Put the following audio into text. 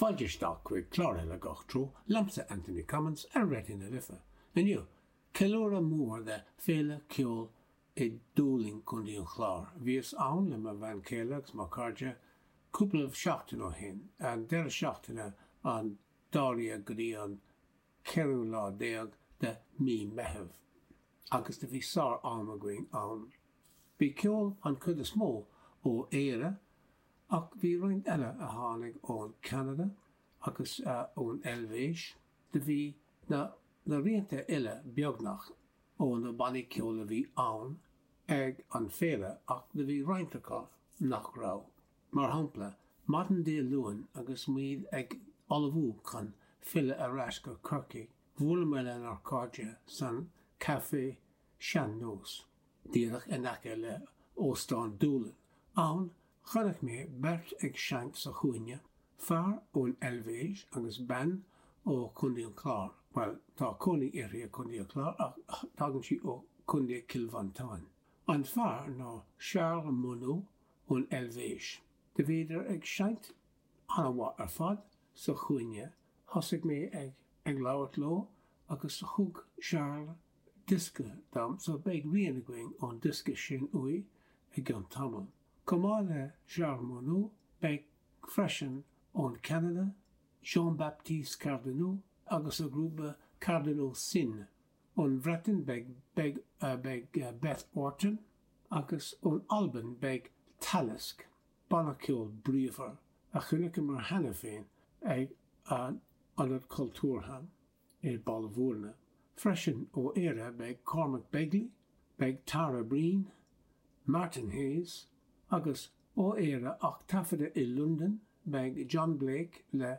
Fáilte isteach chuig clár eile Gach Treo Liomsa Anthony Cummins ar Raidió na Life. Inniu, ceiliúradh mór le Féile Cheoil i Dúlainn, Co. an Chláir. Bhíos ann le mo bhean chéile agus mo chairde cúpla seachtain ó shin, an deireadh seachtaine an dara déag go dtí an ceathrú lá déag de Mí Meitheamh, agus do bhí sár-am againn ann. Bhí ceol an chuid is mó ó Éire ach bhí roinnt eile a tháinig ón Ceanada agus ón Eilvéis, do bhí na rianta uile beagnach ó na bannaí ceoil a bhí ann ag an féile ach do bhí roinnt acu nach raibh. Mar shampla, maidin Dé Luain agus muid ag ullmhú chun filleadh ar ais go Corcaigh, bhuaileamar lenár cairde san Café Sean Nós, díreach in aice le hÓstán Dúlainn. Ann, chonaic mé beirt ag seinnt sa chúinne, fear ón Eilvéis agus bean ó Chontae an Chláir, bhuel tá cónaí uirthi i gContae an Chláir ach tagann sí ó Chontae Chill Mhantáin. An fear ná Charles Monod, ón Eilvéis. Do bhíodar ag seinnt an-mhaith ar fad sa chúinne. Thosaigh mé ag ag labhairt leo agus thug Charles diosca dom so beidh rian againn ón diosca sin uaidh i gcionn tamaill. Chomh maith le Charles Monod beidh freisin ón Cheanada, Jean-Baptiste Cardineau agus a ghrúpa Cardineau Sin ón Bhreatain beidh Beth Orton agus ón Albain beidh Talisk, banna ceoil bríomhar a chonaiceamar cheana féin ag an Ionad Cultúrtha i mBaile Bhuirne. Freisin ó Éire beidh Cormac Begley, beidh Tara Breen, Martin Hayes agus ó Éire ach taifeadta i Londain beidh John Blek le